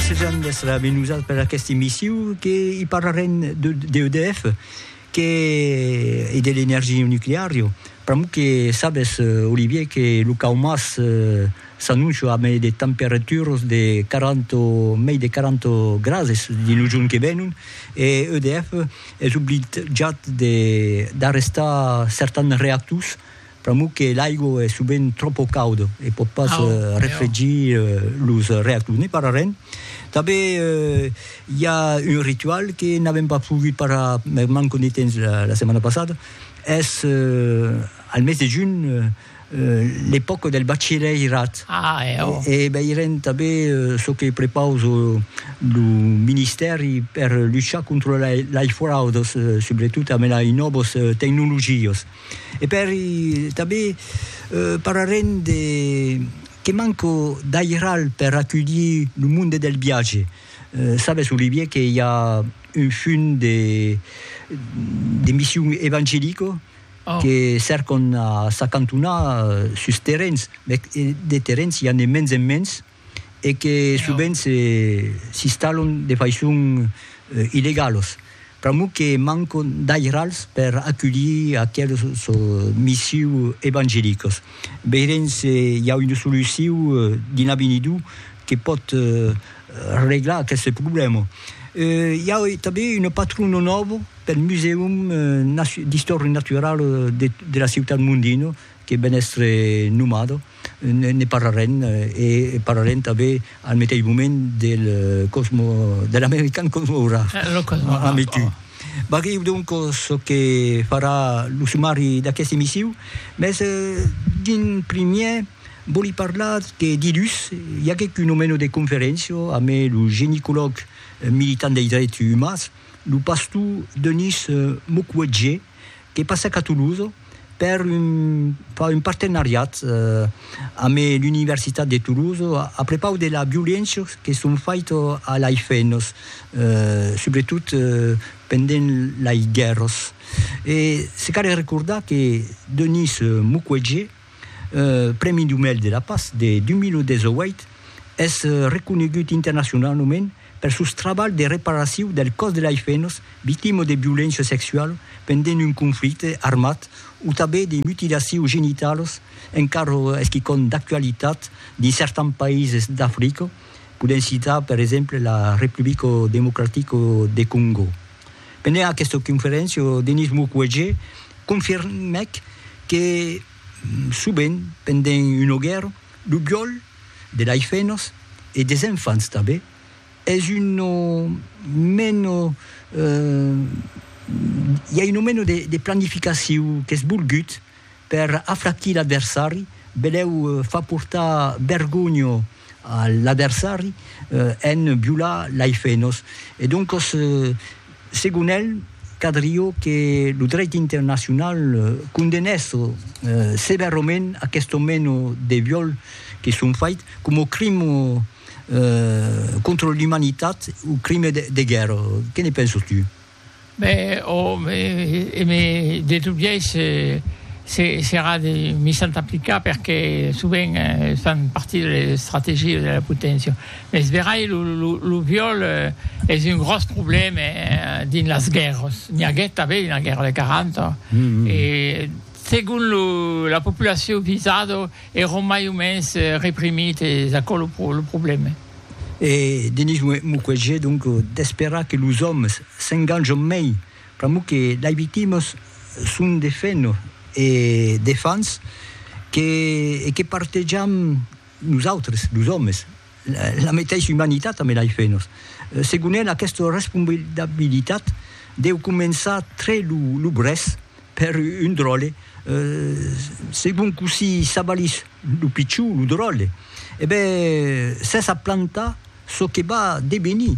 Sejant des la Benusal per aquesta emissió que hi parlarem de, de EDF que, e de l'energia nuclear. Jo. Pr'amor que sabes, Olivier, que lo cau mas eh, s'annoncia a mai de temperaturas de 40, mai de 40 grades dins lo jorn que venon e EDF es obligat de d'arrestar certans reactors Pr'amor que l'aigua es sovent tròpo cauda e pòt pas refregir los reactors. Ne parlarem. Tanben i a un ritual que n'avèm pas pogut parlar per manca de temps la setmana passada, es al mes de junh l'epòca del bachilhèirat e veirem tanben çò que prepausa lo ministèri per luchar contra lei fraudas, subretot amb lei nòvas tecnologias. E per i tanben parlarem de que manco d'airal per aculhir lo monde del viatge. Sabes, Olivier, que i a un fum de de mission evangelico que cercon a s'acantonar sus terrens, mès de terrens i a ne mens en mens, e que sovent s'installon de faiçon illegalos, pr'amor que mancon d'airals per aculhir aqueles missius evangelicos. Veirem se i a una solucion dins l'avenidor que pòt reglar aqueste problèma. I a tanben una patrona nòva pel Musèum d'Istòria Naturala de la Ciutat Mondino, que ben èstre nomado, ne parlarem e parlarem tanben al meteis moment del cosmo, de l'American Cosmograph. Eh, lo Cosmograph, Ami tu. oh. Barriu donc çò que farà lo sumari d'aqueste emissiu, mès d'un primièr vòli parlar que dilhus i aguèc un omeno de conferéncia amb lo genicològ militant dei dreti umans, lo pastor Denis Mukwege, que passèc a Toulouse per far un partenariat amb l'Universitat de Toulouse a prepaus de las violéncias que son faitas a las femnas, subretot pendent las guèrras. E se cal recordar que Denise Mukwege Prèmi Nobel de la Patz de 2018, es reconegut internacionalament per sos trabalhs de reparacion del còs de las femnas victimas de violéncia sexuala pendent un conflicte armat o tanben de mutilacions genitalas, encara es quicòm d'actualitat dins certans païses d'Africa, podèm citar per exemple la Republica Democratica de Còngo. Pendent aquesta conferéncia, lo Denis Mukwege confirmèc que sovent pendent una guèrra, lo viòl de lei fenas e des enfants tanben es una mena, i a una mena de planificaciu qu'es volgut per aflaquir l'adversari, belèu far portar vergonha a l'adversari en violar lei fenos e doncos segon el cadrió que lo dreit internacional condenèsse sevèrament aquesto meno de viol que son fait coma crime contra l'umanitat o crime de guèrra que ne penses tu? Be, ò, be, e me, de tot biais, se, serà de mi s'entaplicar, perque sovent fan partir de les estrategies de la poténcia. Mes verai, lo, lo, lo viol es un gròs problème dins las guèrras. N'i aguèt tanben dins la guèrra de 40, e segon lo, la populacion visada, èron mai o mens reprimits, es aquò lo, lo problème. E Denis Mukwege donc d'esperar que los òmes s'enganjon mei pr'amor que lei victimas son de feno e de fans que e que partejam nosautres los òmes la meteissa umanitat ambe lei fenos. Segon el aquesta responsabilitat deu començar tre lo brèth Per un dròlle, segon cossí s'avalís lo pichon, lo dròlle, e ben, s'es a plantar çò que va devenir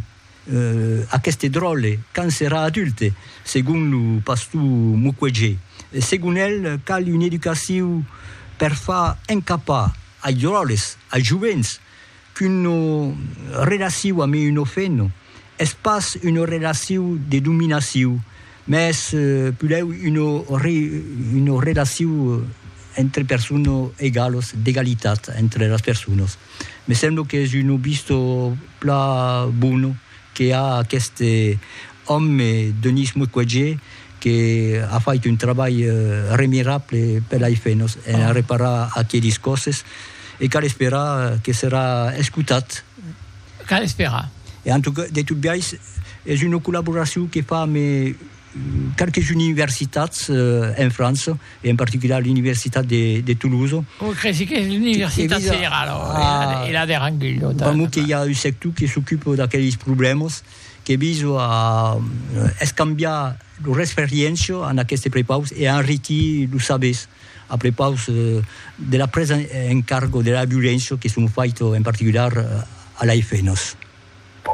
aqueste dròlle quand serà adulte, segon lo pastor Mukwege. Segon el, cal una educacion per far encapar ai dròlles, ai jovents, Qu'una relaciu a mi una feno es pas una relaciu de dominaciu, mès pulèu una relaciu entre persona egalos, d'egalitat entre las personas. Me sembla qu'es una vista plan bona que a aqueste òme Denis Mukwege que a fait un trabalh remirable per la Ifenos en arreparar aquelis còsses e cal esperar que serà escotat. Cal esperar. E en tot biais es una collaboracion que fam e quelques universitats en França, e en particular l'Universitat de, de Toulouse. O cresi que l'Universitat Federala, e la de Rangui. Pr'amor que i a un sector que s'ocupa d'aqueles problèmas, que viso a escambiar lor experiéncia en aquestes prepaus e a enriquir los sabers a prepaus de la presa en cargo de la violéncia que son faita en particular a l'AFNOS.